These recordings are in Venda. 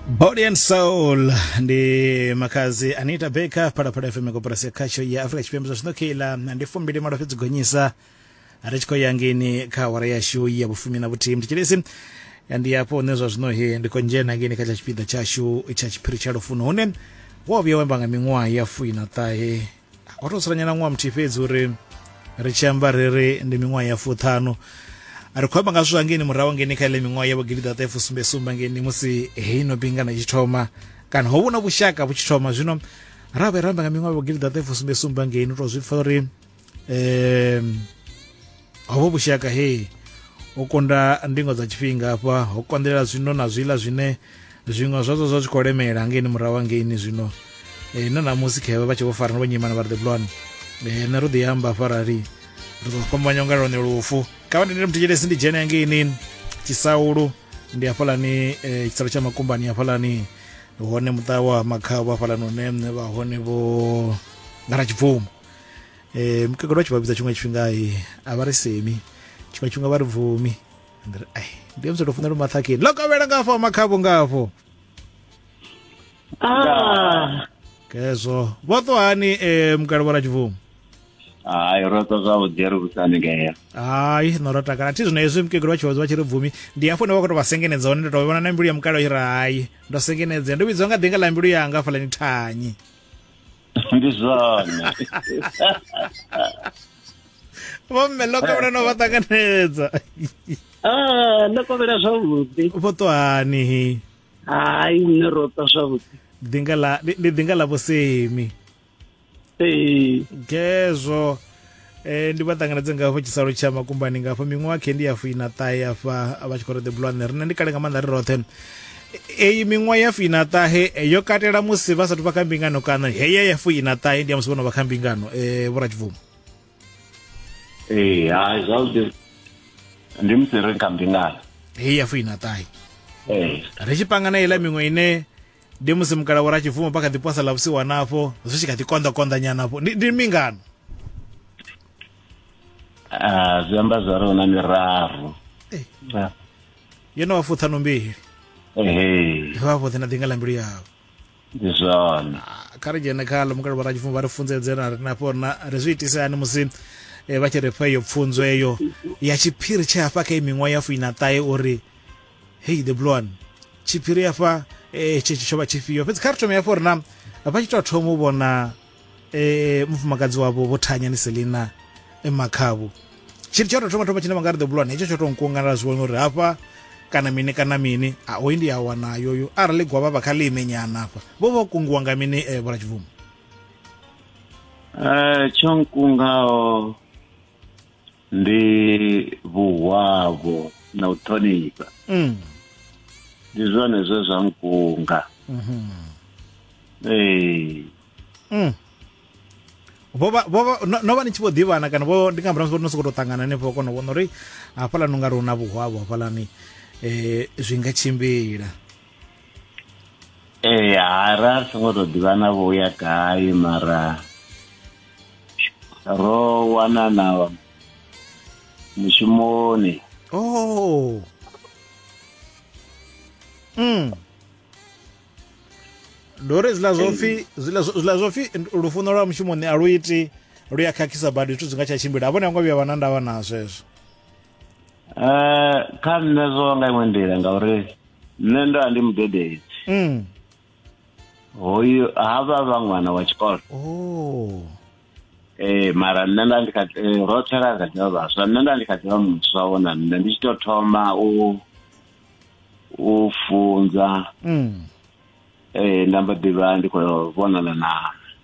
Body and Soul ndi makazi Anita Baker phalaphala FM koporasi ya khatsho ya Africa Tshipembe zwa zwinokila ndi fumbili malo fhedzi gonyisa ri tshi khou ya ngeni kha awara yashu ya vhufumi na vhuthihi mthetshelesi ndi hafho hune zwa zwino he ndi khou dzhena ngeni kha tsha tshipiḓa tshashu tsha tshiphiri tsha lufuno hune wo vhuya wemba nga miṅwaha ya fuiṋa ṱahe ho to tsiranyana ṅwaha muthihi fhedzi uri ri tshi amba ri ri ndi miṅwaha ya fuṱhanu ri khou amba nga zwithu angeni murahu ngeni kha ile miṅwaha ya vhugidi ḓaṱa fusumbe sumba ngeni musi heino bingana i tshi thoma kana ho vhuna vhushaka vhu tshi thoma zwino ra vhe ramba nga miṅwaha ya vhugidi ḓaṱa fusumbe sumba ngeni u to zwi pfa uri um hovho vhushaka hei u kunda ndingo dza tshifhinga hafha ho konḓelela zwino na zwiḽa zwine zwiṅwe zwazwo zwa zwi khou lemela ngeini murahu angeini zwino e, na namusi khevha vha tshi vho farana vho nyimana vha ri the blon e, nṋe ro ḓi amba hafha rali ri ḓo fhambanya unga lone lufu kha vha ndindele muthetshele ndi dzhene angeini tshisaulu ndi hafhalani e, tshisalo tsha makumbani hafhalani hone muṱa wa makhavho hafhalani hune vha hone vho ngara tshibvumo eh mukegulu vha tshi vha vhidza tshiṅwe tshifhinga a vha ri semi tshiṅwe tshifhinga vha ri bvumi ai ndi muthu tou funa lu maṱhakheni ḽo kovhela ngafho makhavho ngafho ah. kezwo vho ṱwa hani um mukale vho ratshibvumo hayi ro ṱwa zwavhuḓi ri vhusani ngea hayi no ro takala thi zwino hezwi mukegulu vha tshi vha tshi ri bvumi ndi hafho ndi vha khou tou vha sengenedza hone ndo tou vhona na mbilu ya mukale i ri hayi ndo sengenedzea ndo vhidziwa nga ḓinga ḽa mbilu yanga hafhaḽani thanyi Ndi zwone. vho mme ḽo kovhela no vha ṱanganedza Ah, ndo kovhela zwavhuḓi. vho ṱwa hani hi Hai, nṋe ro ṱwa zwavhuḓi. ḓinga ḽa ndi- ndi ḓinga ḽa vhosemi Ee. gezwo Eh, ndi vha ṱanganedze nga hafho tshisalo tsha makumbani nga hafho miṅwaha khe ndi ya fuina ṱahe afha vha tshi khou ri the blue ane rine ndi kale nga maanḓa ri roṱhe eyi miṅwaha ya fuina ṱahe eh, yo katela musi vha sathu vha kha mbingano kana heya ya fuina ṱahe ndi ya musi vho no vha kha mbingano um vhora tshibvumo ee hai zwavhuḓi ndi musi ri kha mbingano heyi ya fuina ṱahe ee ri tshi panga na iḽa miṅwe ine ndi musi mukala wo ra tshibvumo pa kha ḓi posa ḽa vhusiwana afho zwi tshi kha ḓi konḓa konḓa nyana afho ndi mingano ah, zwi amba zwa ri huna miraru eh. ah. yo no vha fuṱhanu mbili vha vhoṱhe na ḓinga ḽa mbilu yavho ndi zwone ah, kha ri dzhene kha ḽo mukala vho ra tshibvumo vha ri funzedze na ri nafho rina ri zwi itise hani musi eh, vha tshi ri fha iyo pfunzo eyo ya tshiphiri tshe hafha kha i miṅwaha ya fuina ṱahe uri hei the blue one tshiphiri afha eh, tshetsho tsho vha tshifhio fhedzi kha ri thome hafho ri na vha tshi tou thoma u vhona eh, mufumakadzi wavho vho thanya ni selina makhavhu tshiri tsho tou thoma thoma tshine vha nga ri the blue one hetsho tsho tou nkuanganela zwi vhona uri hafha kana mini kana mini a hoyu ndi a wana yoyo arali gwavha vha kha ḽi imenyana hafha vho vha kungiwa nga mini eh, vhola tshibvumo Eh, tsho nkungaho ndi vhuhwavho na u ṱhonifha mm. ndi zwone zwe zwa nkunga mm -hmm. ee mm. vhovha vhovha no vha ni tshi vho ḓivhana kana vho ndi nga murahu no sokou tou ṱangana henefho vha kona u vhona uri hafhaḽani u nga ri hu na vhuhwavho hafhaḽani um zwi nga tshimbila ee ha ra ri songo tou ḓivhana vho ya gai mara ro wanana mushumoni oh mm ndo ri zwiḽa zwo pfhi zwiḽa zwo pfhi lufuno lwa mushumoni a lu iti lu ya khakhisa badi zwithu zwi nga tsha tshimbila a vhone a ngo vhuya vha na ndavha na zwezwo Eh, kha nṋe zwo nga iṅwe nḓila ngauri nṋe ndo a ndi mudededzi mm. hoyu ha vha vha ṅwana wa tshikolo oh. ee eh, mara nṋe nda ndi kha eh, roṱhe ra kha ḓivha vhaswa nṋe nda ndi kha ḓivha muswa wo na nṋe ndi tshi tou thoma u u funza mm. ee nda mbo ḓivha ndi khou vhonana na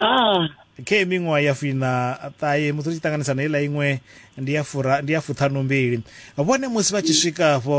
ah. khe miṅwaha ya fina ṱahe musi ri tshi ṱanganisa na iḽa iṅwe ndi ya fura ndi ya fuṱhanumbili vhone musi vha tshi swika afho